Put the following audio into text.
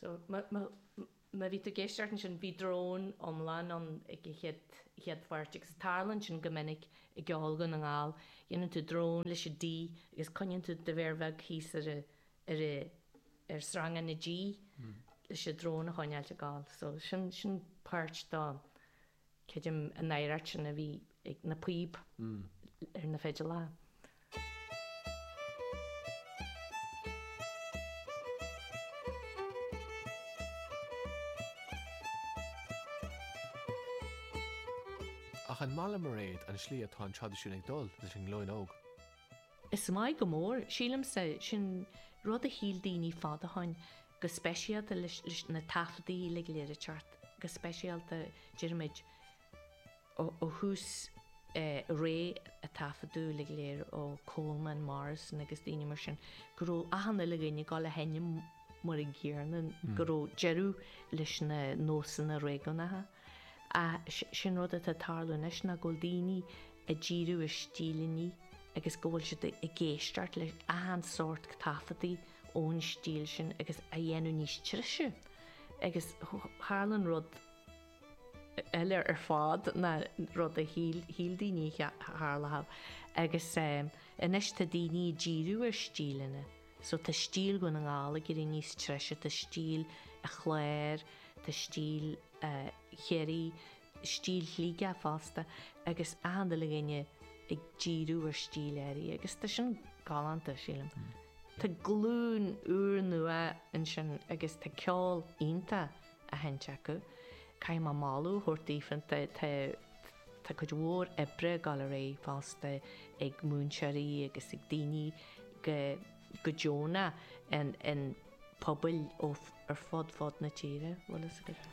So, má, má, má bhí tú ag éisteacht ansin, bhí drón iomlán ann ag an chéad, chéad pháirt, agus tarlaíonn sin go minic i gceol Dhún na nGall, dhéanann tú drón leis an D agus coinníonn tú do mhéar bheag thíos ar a, ar a, ar shreang na G leis an drón a choinneáilt ag gabháil. So, sin, sin páirt dó. Creidim an oiread sin a bhí ag na píob ar na fidléirí. Ach an maith leat a Mhairéad an tslí atá an traidisiún ag dul leis an nglúin óg? Is maith go mór. Sílimse, sin rud a shíl daoine fad ó shoin. go speisialta leis na taifeadtaí uilig go léir a theacht, go speisialta déarfaimid ó thús ré na dtaifeadtaí uilig go léir ó Coleman, Morrison agus daoine mar sin, go raibh achan uile dhuine ag gabháil a sheinm mar a gcéanna, go raibh deireadh leis na nósanna réigiúnacha. Sin rud atá ag tarlú anois, ná go bhfuil daoine ag díriú ar stíleanna agus go bhfuil siad ag éisteacht le achan sórt taifeadtaí ón stíl sin agus á ndéanamh níos treise. Agus tharla rud eile ar fad ná rud a shíl daoine a tharlódh. Agus anois tá daoine ag díriú ar stíleanna. So tá stíl Dhún na nGall ag éirí níos treise, tá stíl an Chláir, tá stíl Chiarraí, stíl Shligigh fosta agus achan uile dhuine ag díriú ar stíl áirithe agus tá sin galánta, sílim. Tá glúin úrnua ansin agus tá ceol iontach á sheinnt acu. Caithfidh mé moladh a thabhairt daofa, tá, tá, tá cuid mhór oibre ag dul ar aghaidh fosta ag múinteoirí agus ag daoine go, go deonach in, in pobail ó, ar fud, fud na tíre, bhfuil fhios agat.